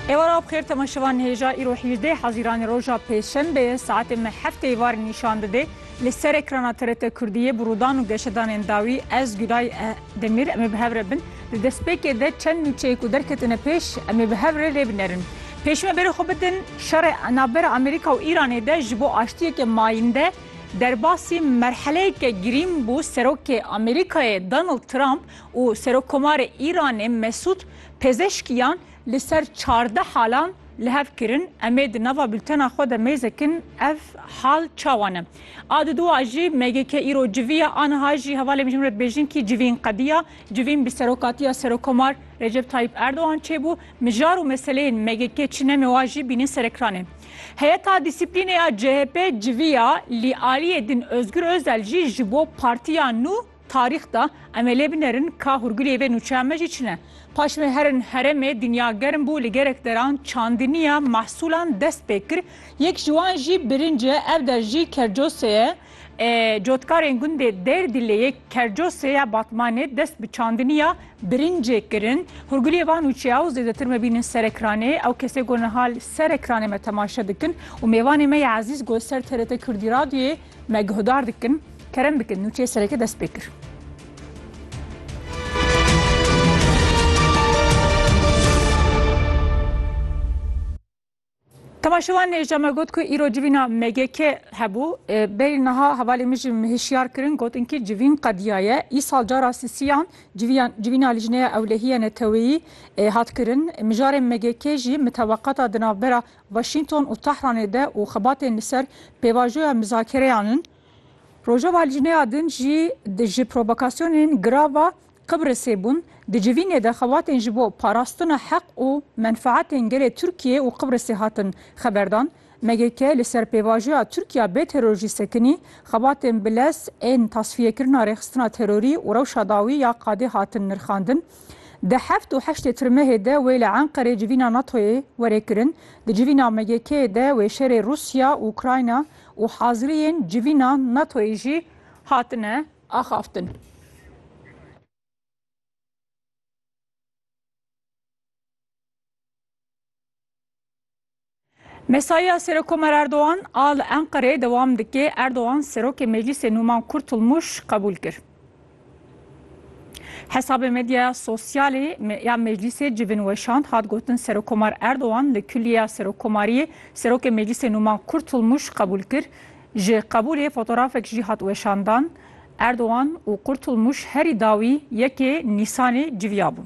Êwara bixêr tema şeva nêja îro hîjdeh Hezîranê roja pêşembe ye saetê me heftê êvar nîşan dide li ser ekrana TRT Kurdiyê bi rûdan û geşedanên dawî ez Gulay Demîr em ê bi hev re bin di destpêkê de çend nûçeyê ku derketine pêş em ê bi hev re lê binerin pêşî me berê xwe bidin şerê navbera Amerîka û Îranê de ji bo aştiyeke mayînde derbasî merheleyeke girîng bû serokê Amerîkayê Donald Trump û Serokkomarê Îranê Mesûd Pezeşkiyan li ser çardeh halan li hev kirin. Em ê di nava bultena xwe de mêzekin ev hal çawa ne. A du dua jî MGK îro civî ye, aniha jî hevalê Mijûm Redbêjinkî civîn qediya. Civîn bi serokatiya Serokkomar Recep Tayyîp Erdogan çêbû. Mijar û meseleyên MGK çi ne mewa jî bînin serekranê. Heyeta Dîsîplînê ya CHP civî ya lî aliyê din Ozgur Ozel jî ji bo partiya nû, Tarîx da, em ê lê binerin ka hûrgulê vê nûçeya me jî çi ne. Paş me herin heremê dinya germ bû li gerek deran çandiniya mehsûlan dest pê kir. Yek ji wan jî birinc e, ev der jî Kercosê ye. Cotkarên gundê Dêrdîlêyê, Kercosê ya Batmanê dest bi çandiniya birincê kirin. Hûrgulê van nûçeya û zêdetir me bînin Serekranê. Ew kesê ku niha li Serekranê me temaşe dikin û mêvanê me ya ezîz ku li ser TRT Kurdî Radyoyê me guhdar dikin. Kerem bikin nûçeyê sereke dest pê kir. Temaşewan nêja me got ku îro civîna MGK hebû. Berî niha hevalê min jî hişyar kirin gotin ki civîn qediya ye. Îsal cara sisiyan civîna lijneya ewlehiya neteweyî hat kirin. Mijarê MGK jî miteweqata di navbera Washington û Tehranê de û xebatên li ser pêvajoya mizakereyan in. Rojava li jineya din jî ji provokasyonên girav a Qibrisê bûn. Di civînê de xebatên ji bo parastina heq û menfaetên gelê Tirkiyê û Qibrisê hatin xeberdan. MGK li ser pêvajoya Tirkiya bê terorjî sekinî, xebatên bi lez ên tasfiyekirina rêxistina terorî û rewşa dawî ya qadê hatin nirxandin. Di heft û heştê Tirmehê de wê li Enqerê civîna NATO'yê were kirin. Di civîna MGK'ê de wê şerê Rûsya û Ukrayna, û haziriyên civîna NATO'yê jî hatine axaftin. Mesaiya Serokomar Erdogan a li Enqereyê dewam dike, Erdogan Serokê Meclîsê Nûman Kurtulmûş qebûl kir. Hesabê medyaya sosyalê ya Meclîsê civin weşand hat gotin Serokomar Erdogan li Kulliya Serokomariyê Serokê Meclîsê Numan Kurtulmuş qebûl kir. Ji qebûlê fotorafek jî hat weşandan. Erdogan û Kurtulmuş herî dawî yekê Nîsanê civiyabûn.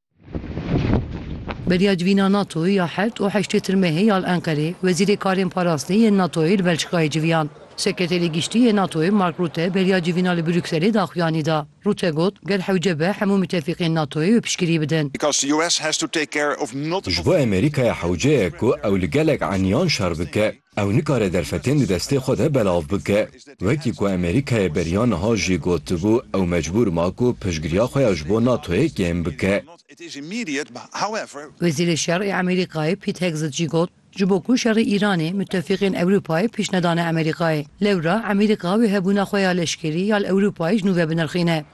Beriya civîna NATO ya heft û heştê tirmehê ya li Enqerê Wezîrê Karên Parastinê yên NATO'yê li Belçîkayê civiyand. Sekreterê Giştî yê NATO'yê Mark Rûte beriya civîna li Brukselê daxuyanî da. Rûte got, Gel hewce be hemû mitefîqên NATO'yê bi piştgirî bidin. Ji bo Amerîkaya hewce ye ku ew li gelek eniyan şer bike. Ew nikare derfetên di destê xwe de belav bike. Wekî ku Amerîkayê beriya niha jî gotibû, ew mecbûr ma ku piştgiriya xwe ya ji bo NATO'yê kêm bike. Wezîrê Şer ê Amerîkayê Pete Hegseth jî got, Ji bo ku şerê Îranê, mutefîqên Ewropayê pişt nedane Amerîkayê. Lewra Amerîka wê hebûna xwe ya leşkerî ya li Ewropayê ji nû vebinerxîne.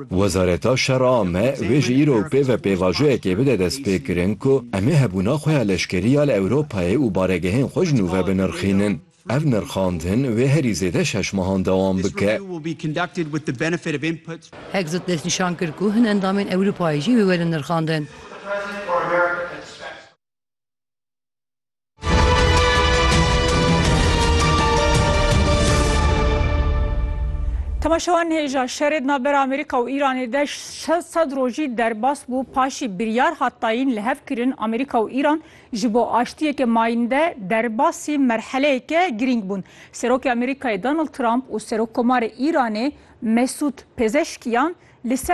Wezareta Şer a me wê ji îro pê ve pêvajoyekê bide destpêkirin ku em ê hebûna xwe ya leşkerî ya li Ewropayê û baregehên xwe ji nû ve binirxînin. Ev nirxandin wê herî zêde şeş mehan dewam bike. Hegseth destnîşan kir ku hin endamên Ewropayê jî wê werin nirxandin. Temaşewan hêja şerê di navbera Amerîka û Îranê de sed rojî derbas bû paşî biryar hat dayîn li hev kirin Amerîka û Îran ji bo aştiyeke mayînde derbasî merheleyeke girîng bûn. Serokê Amerîkayê Donald Trump û Serokkomarê Îranê Mesûd Pezeşkiyan li ser